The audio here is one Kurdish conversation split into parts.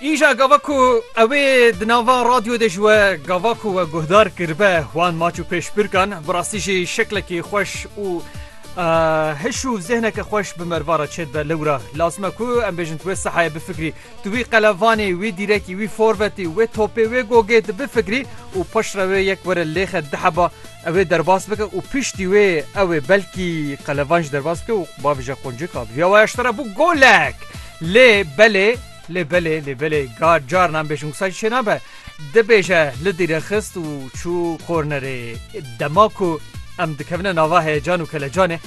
Îja gava ku ew ê di nava radyo de ji we gava ku we guhdar kiribe wan maç û pêşbirkan bi rastî jî şeklekî xweş û hiş û zehneke xweş bi merva re çêdibe lewra lazim e ku em bêjin tu wê sehayê bifikrî tu wî qelevanê wî dîrekî wî forvetî wê topê wê gogê di bifikrî û paşre wê yek were lêxe diheba Ew ê derbas bike û piştî wê ew ê belkî qelevan jî derbas bike û bavê jî ya quncik a. Bi vîya waya ji te re bû golek. Lê belê, lê belê, lê belê gar carna em bêjin wisa jî çê nabe. Dibêje li dîre xist û çû kornerê. Dema ku em dikevine nava heyecan û kelecanê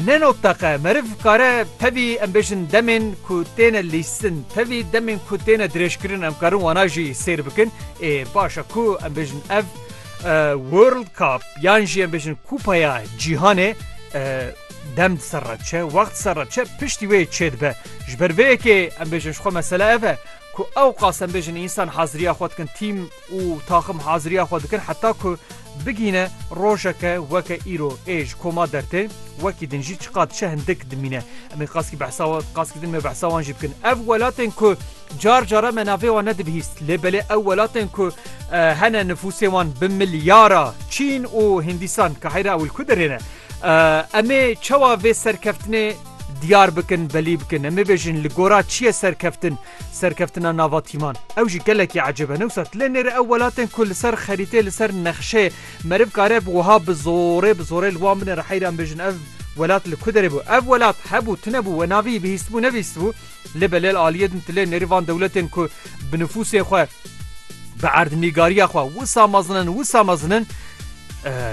ne not teqe. Meriv kare tevî em bêjin demên ku têne lîstin, tevî demên ku têne dirêjkirin em karin wana jî sêr bikin. Ê baş e ku em bêjin ev World Cup yan jî em bêjin Kupaya Cîhanê dem di ser re diçe, wext di ser re diçe piştî wê çê dibe. Ji ber vê yekê em bêjin ji xwe mesele ev e ku ewqas em bêjin însan haziriya xwe dikin, tîm û taxim haziriya xwe dikin heta ku bigîne rojeke weke îro ê ji koma dertê wekî din jî çiqas diçe hindik dimîne. Em ê qaskî behsa qaskî din me behsa wan jî bikin. Ev welatên ku Car cara me navê wan nedibihîst lê belê ew welatên ku hene nifûsê wan bi milyara Çîn û Hindîstan ka heyra ewil ku derêne. Em ê çawa vê serkeftinê diyar bikin belî bikin em ê bêjin li gora çi ye serkeftin serkeftina nava tîman ew jî gelekî ecêbe ne wisa lê nêre ew welatên ku li ser xerîtê li ser nexşê meriv kare bi wiha bi zorê bi zorê li wan binêre heyran bêjin ev welat li ku derê bû ev welat hebû tune bû we navî bihîstbû nebîstbû Lê belêl aliyê din tilê nêrî van dewletên ku bi nifûsê xwe, bi erdnîgariya xwe wisa mezin in, wisa mezin in,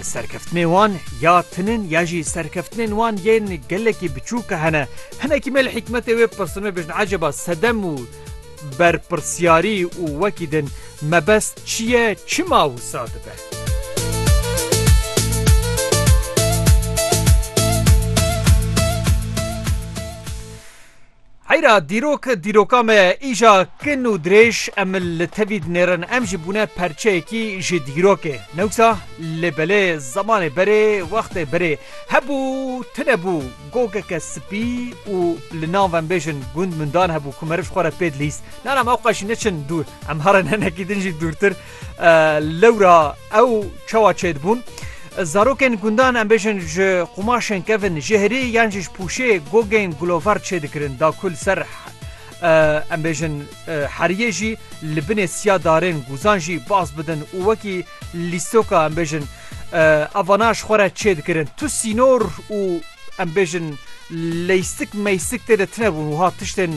serkeftinê wan ya tin in ya jî serkeftinên wan yên gelekî biçûk hene. Hinekî me li hîkmetê wê pirsin me bêjin eceba sedem û berpirsyarî û wekî din mebest çi ye, çima wisa dibe? Heyra dîrok dîroka me ye. Îja kin û dirêj em li tevî dinêrin. Em jî bûne perçeyekî ji dîrokê. Newsa lê belê zemanê berê wextê berê hebû tune bû gogeke spî û li nav em bêjin gund mundan hebû ku meriv xwe re pê dilîst. Nana me oqaj neçin dûr. Em here ne nekî din jî dûrtir. Lewra ew çawa çêdibûn? Zarokên gundan em bêjin ji qumaşên kevin jêhrî yan jî ji pûşê gogên gulovar çêdikirin da ku li ser em bêjin heriyê jî li binê siya darên guzan jî baz bidin û wekî lîstoka em bêjin evana ji xwe re çêdikirin. Tu sînor û em bêjin leystik meystik tê de tunebûn wiha tiştên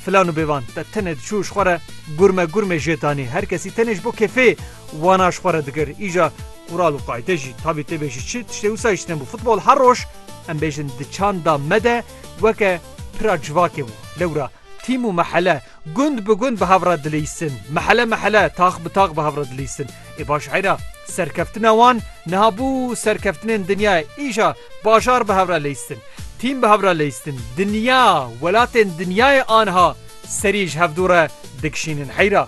Filan û bêvan te tenê diçû ji xwe re gurme gurmê jê danî. Her kesî tenê ji bo kêfê wana ji xwe re dikir. Îja qural û qayde jî tabî tê bê ji çi tiştê wisa jî têne bû. Futbol her roj em bêjin di çanda me de weke pira civakê bû. Lewra tîm û mehele gund bi gund bi hev re dilîstin. Mehele mehele, tax bi tax bi hev re dilîstin. Ê baş eyra serkeftina wan niha bû serkeftinên dinyayê. Îja bajar bi hevra leyistin, tîm bi hevra leyistin, dinya, welatên dinyayê aniha serî ji hevdû re dikişînin heyra.